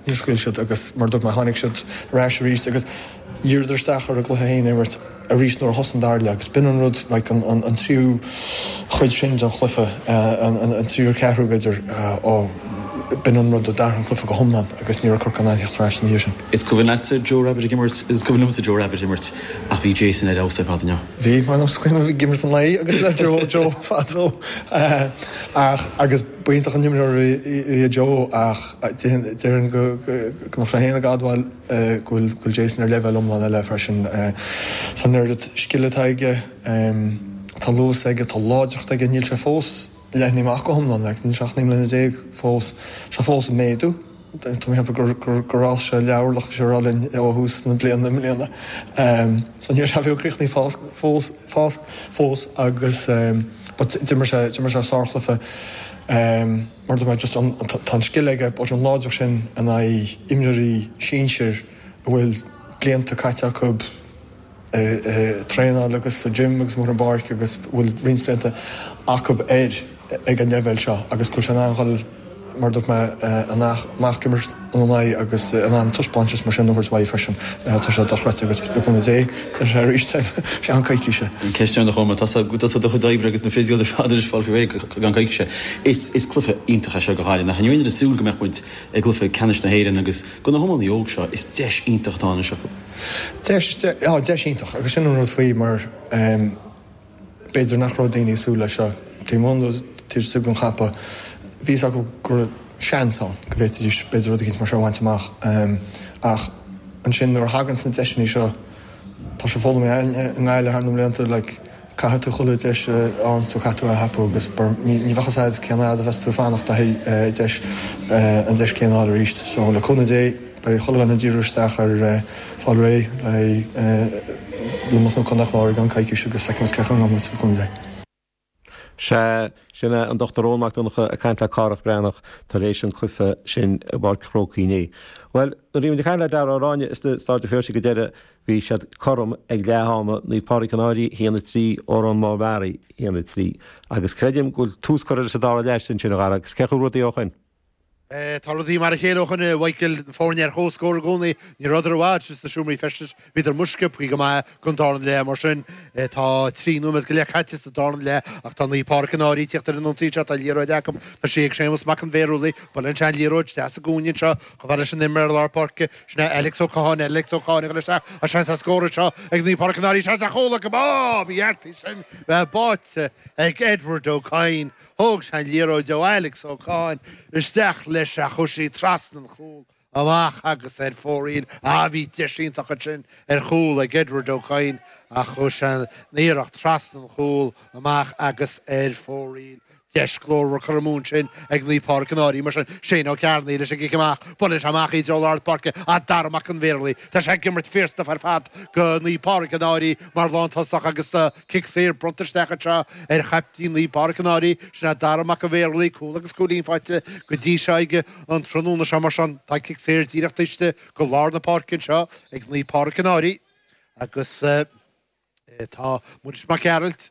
Níor scaoil siad agus mar a dúirt mé tháinig siad ar ais arís agus dhíriodar isteach ar a gcluiche féin a imirt arís nuair a thosaigh an dara leath agus b'in an rud, like, an tríú chuid sin den chluiche, an tríú ceathrú, b'fhéidir, ó, b'in an rud a d'athraigh an cluiche go hiomlán agus ní raibh Corcaigh in ann theacht ar ais ina dhiaidh sin. Is cuimhin leatsa Joe Rabbitte ag imirt? Is cuimhin liomsa Joe Rabbitte ag imirt ach bhí Jason ar fheabhas ar fad, an ea? Bhí, mar is cuimhin liom, ag imirt an lae agus le Joe, Joe fadó ach, agus b'iontach an imreoir a bhí i Joe ach, Déarfainn go mbeadh sé féin ag admháil go bhfuil Jason ar leibhéal iomlán eile freisin. Tá an oiread scil atá aige, tá luas aige, tá láidreacht aige. Níl sé fós leathnaithe amach go hiomlán, níl sé ach naoi mbliana déag fós, tá sé fós ag méadú. Tá mé ag ceapadh gur fhás sé leathorlach leabhar linn ó thús na bliana i mbliana. So níl sé baileach críochnaithe fós agus d'imir sé sárchluiche. mar tá just an, tá an scil aige but an láidreacht sin in aghaidh imreoirí sinsir a bhfuil blianta caite acu ag traenáil agus sa gym agus amuigh ar an bpáirc agus bhfuil roinnt blianta acu air ag an leibhéal seo agus go bhfuil sé in ann dhul mar dúirt mé, amach ag imirt. ina n-aghaidh agus in ann taispeáintais mar sin a thabhairt uaidh freisin. Tá sé dochreidte agus, le cúnamh Dé, déanfaidh sé arís é i gceann coicíse. An ceist deireanach chugam, tá tusa i do chuid oibre agus na physios ar fad anois ag fáil faoi réir i gceann coicíse. Is cluiche iontach é seo go háirithe. Nach raibh muid ag súil go mbeadh muid i gcluiche ceannais na hÉireann agus do na hiománaithe óga seo, is deis iontach atá anois acu. Deis, deis iontach agus sin an rud faoi mar, B'fhéidir nach raibh daoine ag súil leis seo taobh amuigh nó taobh istigh den champa. Bhí a fhios acu go raibh seans ann go bhféadfaidís b'fhéidir rud éicint mar seo a bhaint amach. Ach ansin nuair a thaganns na deiseanna seo, tá sé foghlamtha againn i nGaillimh thar na mblianta, like, caithfidh tú chuile deis a fháganns tú caithfidh tú é a thapú agus mar ní bheadh fhios a'd cén fhad a bheas tú ag fanacht le haghaidh, deis, an deis céanna a fháil arís. So, le cúnamh Dé. Beidh chuile dhuine ag díriú isteach ar fáil réidh le Luimneach nó Contae an Chláir i gceann coicíse agus feicfimid cén chaoi a ngabhfaidh muid sa gcondae. Sea, sin é an Dr. Eoin Mac Donncha ag caint le Cárthach Breathnach tar éis an cluife sin i bPáirc an Chrócaigh inné. Bhuel, nuair a bhí muid ag caint le Darragh Ó Ráinne i Staid an Phiarsaigh go deireadh bhí siad cothrom ag leath ama, Naomh Pádraig an Fhairche 1-3, Órán Mór Meáraí 1-3. Agus creidim go bhfuil tús curtha leis an dara leath sin, sin a Dharragh, agus cén chaoi a bhfuil rudaí ó shoin? Tá rudaí mar a chéile ó shoin go bhfuil na foirne ar chomhscór i gcónaí. Ní rabhadar i bhfad sin sna seomraí feistis. Bhíodar amuigh sciobtha go maith don dara leath. Mar sin, tá trí nóiméad go leith caite sa dara leath ach tá Naomh Pádraig an Fhairche ag teacht ar an ionsaí seo. Tá liathróid acu. Tá sí ag Séamas Mac an Bhearshúiligh. Buaileann sé an liathróid deas i gcúinne anseo. Chomh fada leis an imreoir lár páirce. Sin é Alex Ó Catháin. Alex Ó Catháin ag dhul isteach. Tá seans ar scór anseo ag Naomh Pádraig an Fhairche sé an deachúla? Go maith! Bhí Art ansin. Buaite ag Edward Ó Cadhain. Thóg sé an liathróid ó Alex Ó Catháin isteach leis ach chuir sé í trasna an chúl amach agus ar fóraoil. Á, bhí deis iontach ansin ar chúl ag Edward Ó Cadhain ach chuir sé an iarracht trasna an chúl amach agus ar fóraoil. Deis glórmhar curtha amú ansin ag Naomh Pádraig an Fhairche mar sin. Shane Ó Cearnaigh leis an gcic amach. Buaileann sé amach í dtreo lár na páirce ach Dara Mac an Bhéarlaí, tá sé ag imirt fíorstuif ar fad go Naomh Pádraig an Fhairche mar lántosach agus Cic saor bronnta isteach anseo ar chaiptín Naomh Pádraig an Fhairche. Sin é Dara Mac an Bhéarlaí, cúl agus cúilín faighte go dtí seo aige an tráthnóna seo mar sin tá cic saor díreach taobh istigh go lár na páirce anseo ag Naomh Pádraig an Fhairche agus tá Muiris Mac Gearailt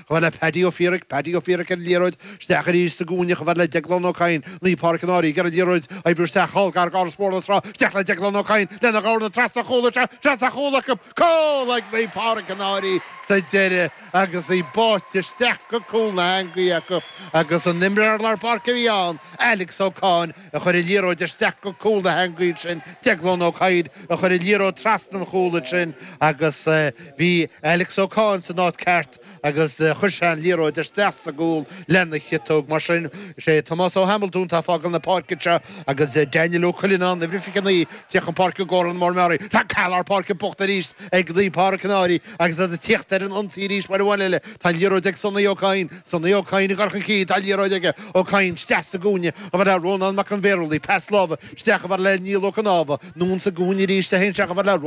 Chomh fada le Paddy Ó Fiairaic, Paddy Ó Fiairaic ar an liathróid, isteach arís sa gcúinne, chomh fad le Deaglán Ó Cadhain, Naomh Pádraig an Fhairche ar an liathróid, oibriú isteach thall gar d'Áras Mhór na Trá, isteach le Deaglán Ó Cadhain, lena dhorna trasna an chúl is ea trasna an chúl acu, cúl ag Naomh Pádraig an Fhairche sa deireadh agus í báite isteach go cúl na heangaí acu agus an t-imreoir lár páirce a bhí ann, Alex Ó Catháin, a chuir an liathróid isteach go cúl na heangaí ansin Deaglán Ó Cadhain a chuir an liathróid trasna an chúl ansin agus bhí Alex Ó Catháin san áit ceart agus chuir sé an liathróid isteach sa gcúl lena chiotóg mar sin. Is é Tomás Ó Hamiltún tá fágáil na páirce anseo agus Daniel Ó Cuilleanán, uimhir 29, tíocht chun páirce go Órán Mór Meáraí. Tá an cath lár páirce buachta arís ag Naomh Pádraig an Fhairche. Agus iad ag tíocht ar an ionsaí arís uair amháin eile, tá liathróid ag Sonaí Ó Cadhain. Sonaí Ó Cadhain ag cur chun cinn, tá liathróid aige. Ó Cadhain, isteach sa gcúinne, chomh fada le Rónán Mac an Bhéarlaí, pas láimhe, isteach chomh fada le Neil Ó Cnámha, anonn sa gcúinne arís, isteach chomh fada le.